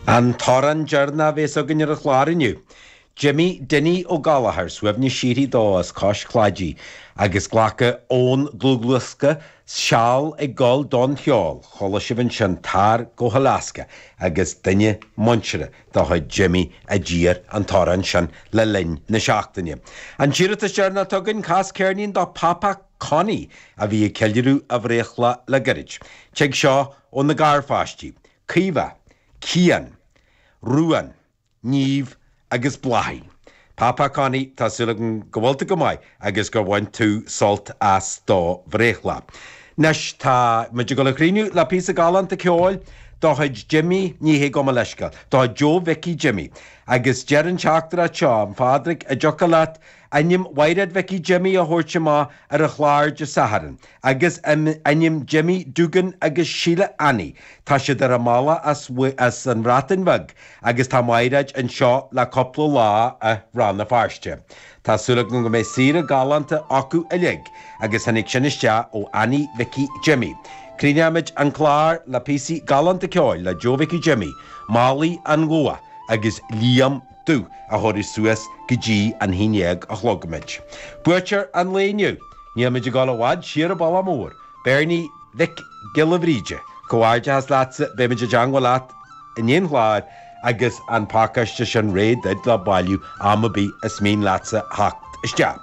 An t-amhrán deireanach a bhéas againn ar an chlár inniu. Jimmy Dinny Ó Gallchóir, suaimhneas síoraí dó, as Cois Cláidí, agus glactha ón dlúthdhiosca Seal ag Gabháil don Cheol, chuala sibh ansin Tar go hAlaska agus duine muinteartha de chuid Jimmy a d'iarr an t-amhrán sin le linn na seachtaine. An t-iarratas deireanach atá againn, cas ceirnín do Phapa Connie a bhí ag ceiliúradh a bhreithlá le gairid. Tig seo. Ó na garpháistí, Caoimhe, Cian, Ruán, Niamh agus Bláithín. Papa Connie, tá súil agam go bhfuil tú go maith agus gur bhain tú sult as do bhreithlá. Anois tá muid ag dul a chríochnú le píosa galánta ceoil de chuid Jimí, ní hé gabh mo leithscéal, de chuid Joe Mhicí Jimí, agus deir an teachtaireacht seo, A Phádraig an dtiocfadh leat Ainm Mhairéad Mhicí Jimmy a thabhairt amach ar an chlár de Satharn agus ainm Jimmy Dugan agus Sheila Annie, tá siad ar a mbealach as an mBreatain Bheag agus tá Mairéad anseo le cúpla lá i Rann na Feirste. Tá súil agam go mbeidh saoire galánta acu uilig agus tháinig sin isteach ó Annie Mhicí Jimmy. Críochnaímid an clár le píosaí galánta ceoil le Joe Mhicí Jimmy, Málaí an Luaith agus Liam. Dubh a thabharfaidh suas go dtí an haon déag a chlog muid. Buaiteoir an lae inniu, níl muid ag dul i bhfad siar an bealach mór, Beirní Mhic Giolla Bhríde, comhghairdeachas leatsa, beimid i dteagmháil leat i ndiaidh an chláir agus an pacáiste sin réidh duit le bailiú am ar bith is mian leatsa theacht isteach.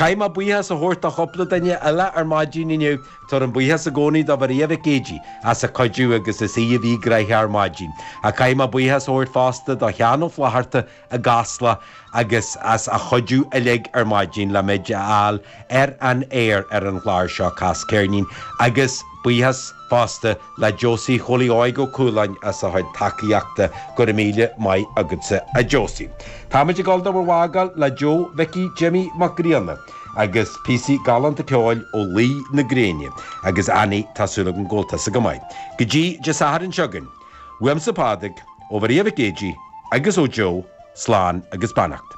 Caithfidh mé buíochas a thabhairt do chúpla duine eile ar maidin inniu, Tabhairim buíochas i gcónaí do Mharia Mhic Géidigh as a cuidiú agus is í a bhí gnoitheach ar maidin. Ach caithfidh mé buíochas a thabhairt fosta do Sheán Ó Flatharta i gCasla agus as a chuidiú uilig ar maidin le muid a fháil ar an aer ar an chlár seo Cas Ceirnín agus buíochas fosta le Josie Chóilí Óig Ó Cualáin as a chuid tacaíochta. Go raibh míle maith agatsa a Josie. Táimid ag dul do bhur bhfágáil le Joe Mhicí Jimmy Mac Grianna agus píosaí galánta ceoil ó Luí na Gréine agus Annie tá súil agam go bhfuil tusa go maith. Go dtí Dé Sathairn seo chugainn. Uaimse Pádraig, ó Mharia Mhic Géidigh agus ó Joe, slán agus beannacht.